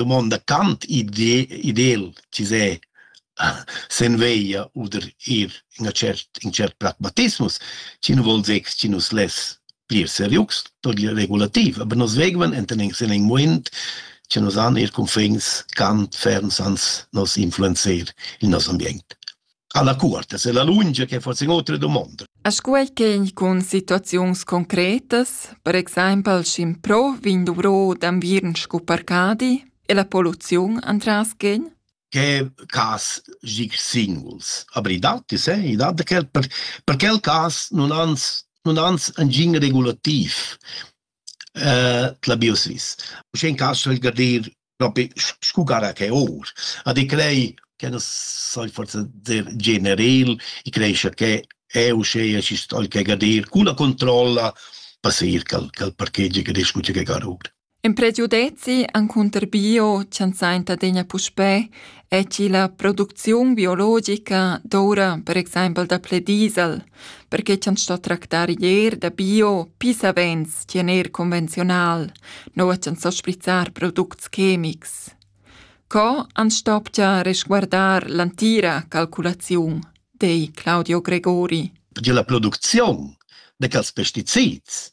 dumonda Kant idel chi s'è sen veglia oder ir in a cert in cert pragmatismus chi nu vol zeg chi nus less plir serius per la regulativ aber nos vegvan enten sen in moment che nos han ir confins Kant ferms ans nos influencer il nos ambient alla curta, se la lunga che forse in altre domande. A scuel che con situazions concretas, per exempel sc'in pro vin dovro d'anviern scu parcadi e la poluziun antras gen? che cas gig singles abridati se i dat quel per, per quel cas non ans non ans engin regulativ eh, la biosvis. Sche in caso il gadir Propi scu gara che our. A di crei che nu sai forsa dir generel, i creescha che eu uscheia schi sto'l che gadir cun la controlla pa seir ch'al ch'al parkegi gadesch cunche gar our. In prediu dezi encunter bio, chi'ans sainta adegna puspè e chi la producziun biologica doura per exaimpel daplè diesel, perche cha'ns sto tractar ier da bio pis savens chi en eir convenziunal, noua ch'ans sto sprizzar products chemics. Co ans stopcha resguardar l'antira calculaziun, di Claudio Gregori. Perche la producziun de quels pesticids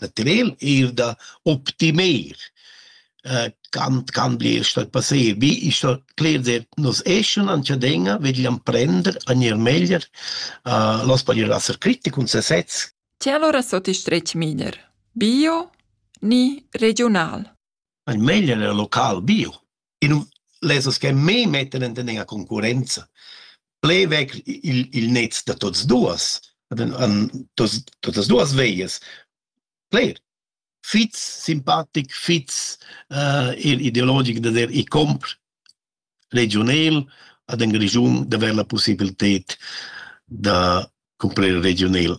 material eir da optimer äh, can can bler stat passé wie ich so clear der nos eschen an chadena vegliam prender a nier meglier uh, los paglier asser critic un se sez Ti allora sotto strech miner bio ni regional Ein meglier er local bio e nu lezas che me mettan in tendenza concurrenza. Ple vecr il il net da tots duos, an totas duas veias. Ple fitz simpatic, fitz il ideologic da der i compr regiunel ad ün regiun d'avair la pussibilted da cumprer regiunel.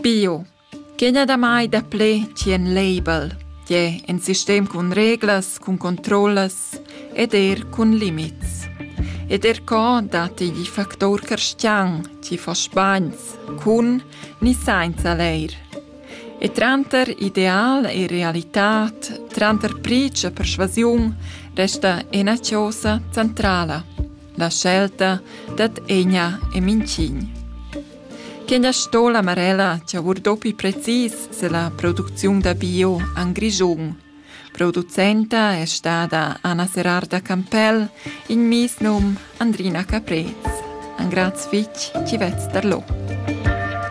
Bio. Que gnà damai daplè chi en label, tie in sistem cun reglas, cun controllas ed eir cun limits. Ed er co dat igl factor carstian chi fa sbagns cun ni sainza leir. E tranter ideal e realitad, tranter pric e persvasiun, resta ina chosa centrala, la scelta dad egna e minchign. Quegna sto la Marella chavur dopi precis se la producziun da bio an Grischun. Producenta è stata Anna Serarda Campell in mis num Andrina Caprez. An graz fitg ci vez darlo.